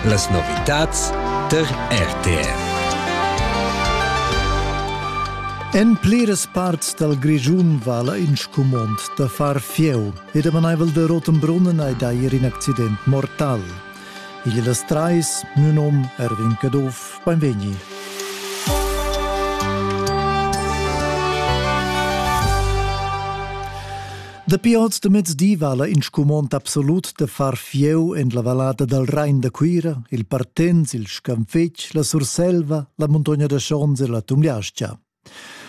Las novitads tar RTR. En pliras parts dal Grischun vala in scumond da far fieu e damanaivel de Rotenbrunnen ei dair in accident mortal. Igl las trais, nun om Erwin Caduff, beim Vegni. Dapi oz de mezdi vala in scumond absolut de far fieu en la vallada dal Rhein da Cuira, il Partens, il Scanfetg, la Surselva, la Muntogna da Schons e la Tumgliascha.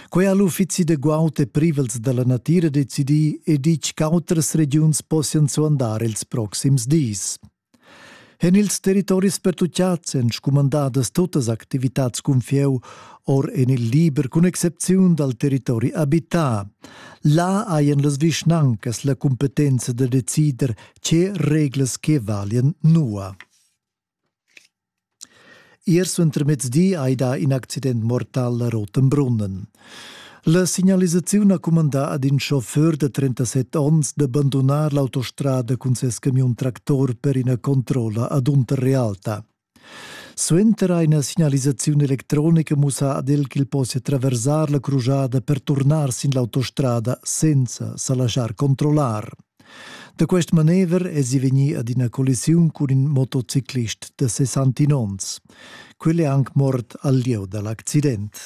Quei ha l'uffizi de guaut e privels dalla natira decidì e ditg ch'autras regiuns possian suandar ils proxims dis. En ils territoris pertuccads èn scumandadas tuttas activitads cun fieu or en il liber cun excepziun dal territori abità. Là hajan las vischnancas la cumpetenza da decider tge reglas che valian nua. Ier suentermezdi hai dà in accident mortal a Rotenbrunnen. La signalisaziun ha cumandà ad in chauffeur da 37 onns da bandunar l'autostrada cun ses camiun-tractor per ina controlla ad Unterrealta. Suenter ha ina signalisaziun electronica mussà ad el ch'el possia traversar la crujada per turnar sin l'autostrada senza sa laschar controllar. Da quest manever es i vegnì ad ina collisiun cun in motociclist da 61 onns. Quel è anc mort al lieu da l'accident.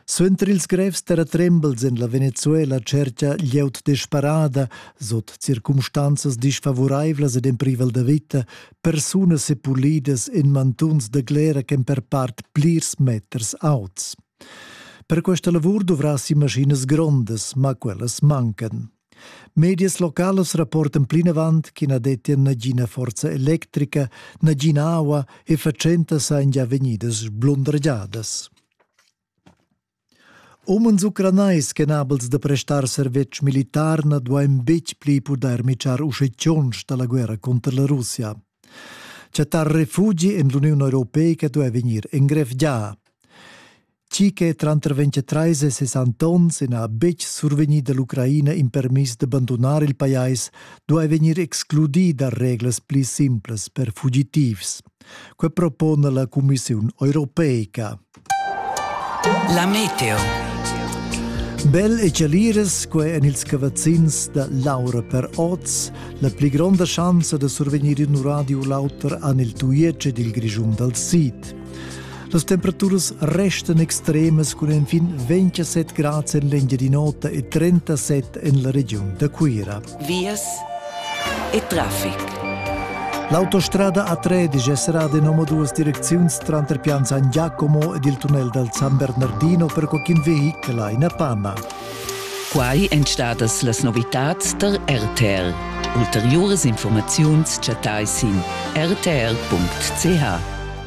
Suenter ils grevs terratrembels en la Venezuela cerca glieud desparada, sot circumstanzas disfavuraivlas ed en privel da vita, persunas e pulidas en mantuns da glera ch'en per part plirs meters auts. Per questa lavur dovrassi maschinas grondas, ma quellas mancan. Medias localas rapportan plinavant che na dettia nagina forza electrica, nagina aua e fatschentas sain già vegnidas sblundragiadas. Umens ucranais chenabels da prestar servetsch militar na duain betg pli pudair mitschar usche da la guerra cunter la Russia. Chattar refugi en l'Uniun Europeica duai vegnir engrevgià. Tgi che tranter 23 e 60 onns n'ha betg survegnì dall'Ucraina in permiss da bandunar il pajais, duai vegnir excludì da reglas pli simplas per fugitivs. Quai propona la Cumissiun europeica. La meteo. Bel e chaliras, quai en ils cavazzins da Laura per oz, la pli gronda schanza da survegnir in radio u l'auter en il tuietsch dil Grischun dal sid. Las temperaturas restan extremas cun enfin 27 grads en l'Engiadin'Ota e 37 en la regiun da Cuira. vias e traffic. L'autostrada A13 è serrada in duas direcziuns tranter Pianzan Giacomo ed il tunnel dal San Bernardino per qualcun vehichel a ina panna. Quai èn stadas las novitads tar RTL. Ulteriuras informaziuns chattai sin rtl.ch.